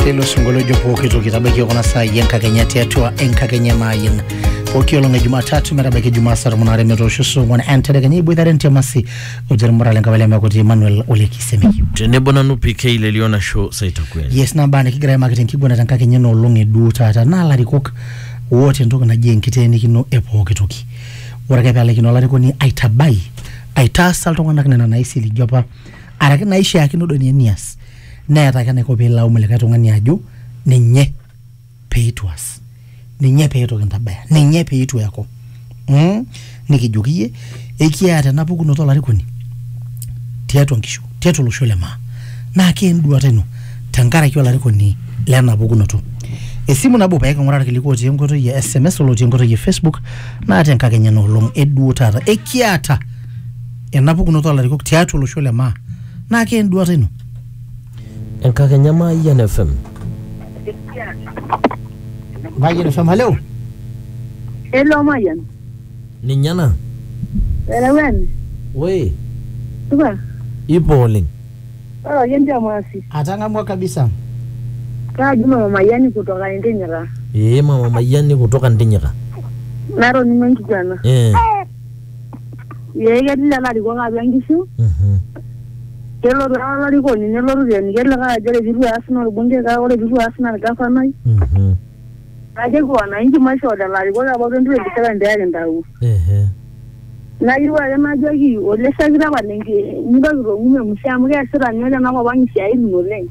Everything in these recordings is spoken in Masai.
teilo sinkolio ojo pooki toki tabaiki kuna saai enkakenya tiatua enkakenya maayin pooki olong e jumatatu metabaiki jumaa saa tomon aare metoosho saa ong'uan entedekenya iboitare ntiamasi ojermura le nkabila mekuti emmanuel olekisemei tenebo nanu pk lelio nasho saitakweli yes nabaa nikigira aimaki tenkiguana tenkakenya ena olong eduo taata naa larikok oota entoki naji enkiteenikino e pooki toki ore ake peelaikino olarikoni aitabai aitaasa iltung'anak nena naisiligia apa araki naishiakino doi ninye nias neeta ake enaiko pee ilaumu likae tung'ani ajo ninye pee itu aas ninye pee itu kintabaya ninye pee itu eeku mm? nikijoki iyie ekiata ena pukunoto olarikoni tiatua nkishu tiatua olosho le maa naa kee enduata ino tenkaraki olarikoni lena pukunoto esimu nabo pee king'uraa irkiliku otii enkoitoi e sms olotii enkoitoi e facebook naa tenkakenya ena olong eduo taata ekiata ena pukunoto olarikok tiatua olosho le maa naa kee enduata ino Enkakenya Mayian FM. Mayian FM haleo Hello Mayian. Ninye ena. Erewen. Woi, Supa. ipo oleng. Ore ake ndio maasi. atang'amua kabisa Kaji mama Mayian kutoka Entenyera. Ee mama Mayiani kutoka Ntinyika. Natoning'o enkiguana. Eh. Ee ketii lelo arikok atua nkishu, Mhm. kelotu ake olarikoni nelotu aitieniki likae ajo ore pitu eas naa olbungei kake ore pitu eas naa olgafanai. Mhm. Naa keji wananchi maishoo lelo arikok apa o twenty twenty seven pee kintau. Ehe. Nayieu ake najoki ole shakitambo mitoki aitong'u memusi amu keesita ninye tenakop ang' isiaitin oleng'.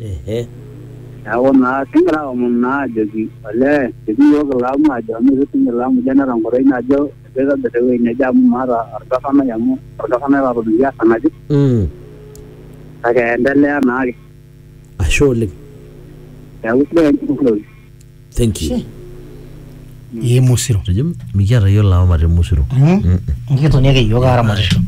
Ehe. Neeku naa kigira aomon naa ajoki olee ketii iyiook ilaamu ajo amu eitu sii ilaamu ijo eneeta enkoitoi najo keitobir ewueji neje amu maata orgafanai amu orgafanai laatomitiki aas enaje Mm. kake endelea naake. Ashe oleng. Neeku sidai ake enjurore. Thank you. Ye musiro. Ejo mikiata yiok lawama te musiro. Nikitoni ake yiok aramatisho.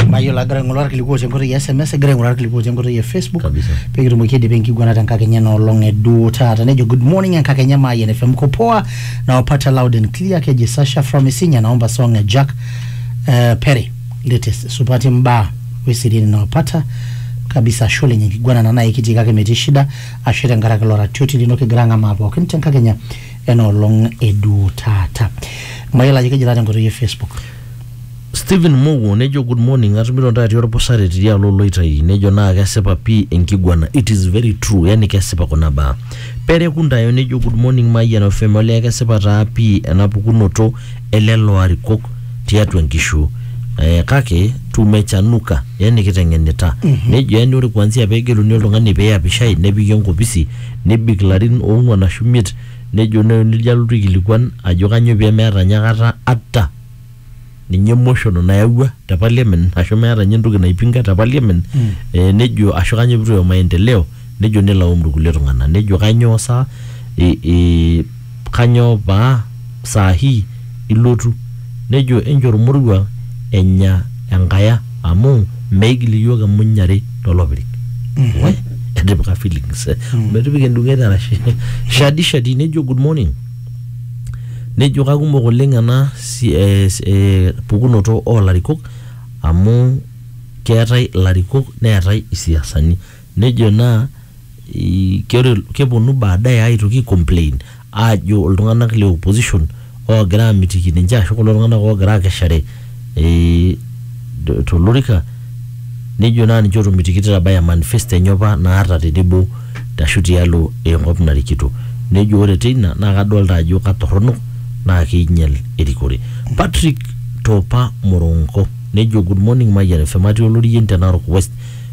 Mayiolo agira aing'oru irkiliku otii enkoitoi e SMS, egira aing'oru irkiliku otii enkoitoi e Facebook. Kabisa. Pee kitumoki aidipa enkiguana te nkakenya ena olong e duo taata. Nejo good morning enkakenya Mayian FM mko poa nawapata loud and clear keji Sasha from Isinya naomba song e Jack eh, Pere latest supati mbaa weseriani nawapata kabisa ashe oleng enkiguana ena naa ekitii kake metii shida ashe tenkaraki ilo ratioti lino kigira ang'amaa pookin tenkakenya enoolong eduu taata mayiolo ajo kejita tenkoitoi e facebook Stephen Mowuo nejo good morning atumito ntae atii olpusare tidialo oloitai nejo naa kesipa pii enkiguana it is very true yani kesipa kuna baa Pere Kundayo nejo good morning Mayian FM olee kesipa taa pii ena pukunoto elelo arikok tiatua nkishu eh, kake tumechanuka yani kiteng'enita nejo yani ore kuanzia pegeluni oltung'ani peyapishai nepiki enkopisi nebik larin ong'uan ashu miet nejo ne- nejo alotu aikilikuan ajo kanyoo pemeeta nye akata ata ninye motion nayawua te parliament ashu meeta ninye entoki naipinga te parliament eh, nejo ashu kanyoo pitu eyau maendeleo Nejo nelaum irkulie tung'ana nejo kanyoo sa ee kanyoo paa saa hii ilotu? Nejo enchoo ormoruo enya enkaya amu meigil iyiook emuny are to lopirik. We etipika feelings metipika endung'et arashe. Shadi shadi nejo good morning nejo kakumok oleng ena si ee ee pukunoto oo larikok amu keetae ilarikok neetae isiasani. Nejo naa ore keponu baadaye aitoki aicomplain aajo iltung'anak le opposition oogira aamitiki ninche ashu kulo tung'anak oogira aakeshare eh, tolorika nejo naa ninche ootomitikito eitabaya manifesto enye opa naata tenebo ashu tialo enkop narikito. Nejo ore teina naa kadolita ajo katorrono naa keinyial erikore. Patrick Topa Moronko nejo, Good morning Mayian FM, atii Olorien te Narok West.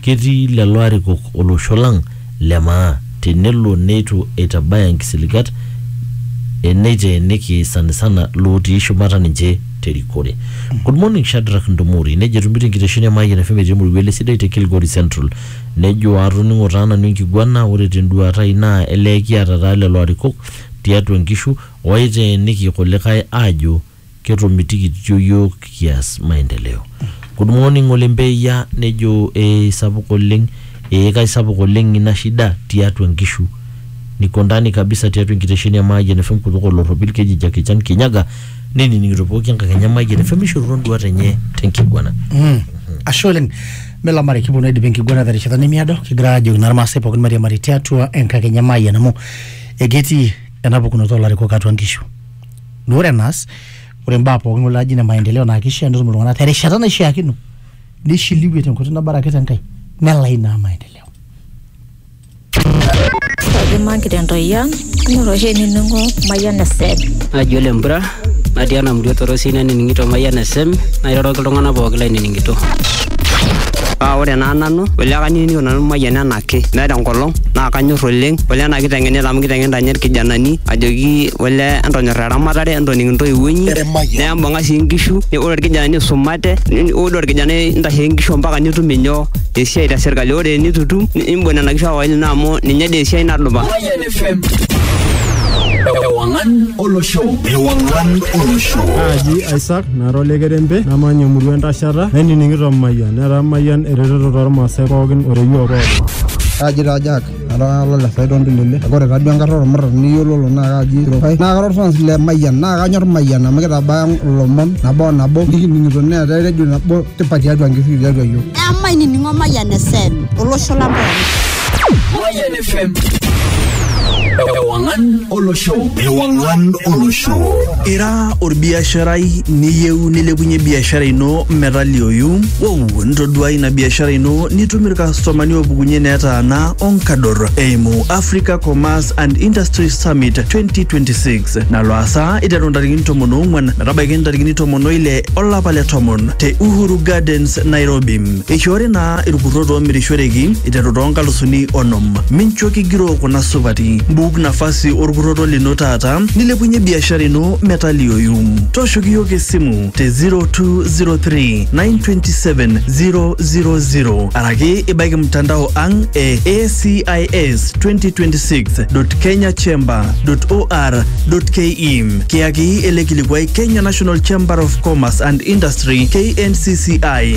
Ketii lelo arikok olosho lang le maa tenelo neitu eitabaya nkisiligat e neiteeniki sanisana lootii shumata ninche te rikore. Good morning Shadrack Ntomori, nejo etumito enkitesheni e Mayian FM etii Emoruo ele Sidai te Kilgory Central. Nejo atoning'o taa nanu enkiguana ore te nduaata ai naa elee kiata taa lelo arikok tiatua nkishu ooiteeniki kulikae aajo Ketomitikitio yiok kias maendeleo. Good morning ng'ole Mbeya nejo ee sapuk oleng ee kaisapuk oleng ina shida tiatua nkishu niko ndani kabisa tiatua enkitesheni e Mayian FM kutoka Olorropil keji Jackie Chan Kinyaga nenining'ito pooki enkakenya e Mayian FM eishorutua nduat enye tenkiguana. Mm. Ashe oleng. Melamari kiponu aidip enkiguana terishata nemiado kigira ajoki naa Irmaasai pookin mairiamari tiatua enkakenya e Mayian amu eketii ena pukunoto oo larikok atua nkishu. naa ore enaas ore imbaa pookin kulo laaji ine maendeleo naa kishaa netum iltung'anak terishata naishiakino nishiliwie tenkoitoi nabaraki te Nkai nelai naa maendeleo. Kajo mankite ntoi ang, ing'or oshi enining'o Mayian FM. naji ole mpura natii ena murua torosi nanining'ito mayian esem nairoroki iltung'anak pooki lainining'ito Ah, ore naa nanu, olekaniningo nanu mayian ena ake meeta enkolong naa kanyor oleng ole ena kiteng'enita amu kiteng'enita ninye irkijanani ajoki ole entonyor eramatare entoning intoiwuo inyi nembung'a sii inkishu ne- ore irkijanani isumate ni- ore orkijanai intasheki inkishu mpaka nitum inyoo esiai te sirkali ore enitu itum ni- imbung nena kishu ake olino amu ninye dii esiai nadupa Mayan FM. Ewangan Olosho. Ewangan Olosho. Naaji Isaac nara olekerembe namanya emurua entashata nainining'ito Mayian. Netaa Mayian eretoto toolmaasai pookin o reyioo pookin. Kaji taa Jack, ara lo le Saidon Tulele. Kake ore taa duo enkarna olmurran niyiololo naa kaji Kirokai. Naa kara olfans le Mayian naa kanyor Mayian amu keitabaya ilomon nabo o nabo nikining'ito neetae redio nabo tipat tiatua nkishui tiatua iyiook. Amaa inining'o Mayian FM, olosho lang pooki. FM. Ewangan Olo Show. Ewangan Olo Show. Ira orbiasharai niyieu nilepunye biashara ino metalioyu? Wow, ntoduai ina biashara ino nitum irkastomani oopukunye netaana onkador eimu Africa Commerce and Industry Summit 2026 nalo asa iteru ntarikini tomon oong'wan metabaiki ntarikini tomon oile olapa le tomon te Uhuru Gardens, Nairobi. Eishoori naa irkurrot oomirishoreki iteru too nkalusuni onom. Mincho kigiroo kuna supati. Mbuk nafasi orkurroto lino taata nilepunye biashara ino metalioyu. Tooshoki iyiook esimu te 0203 927 000 araki ibaiki mtandao ang e ACIS 2026.kenyachamber.or.ke. Kiyaki ele kilikuai Kenya National Chamber of Commerce and Industry KNCCI.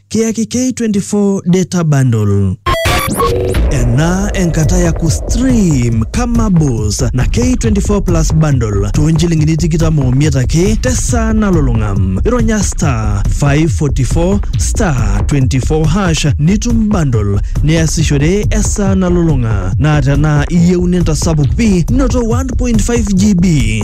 kiyaki K24 data bundle. Ena enkata ya kustream kama bos na K24 plus bundle toonchilingini tikitam omiet ake tesaa nalulung'a. Ironya star 544 star 24 hash nitum bundle niasishore esaa nalulung'a. Naa tenaa iyieu nintasapuk pi noto 1.5 GB.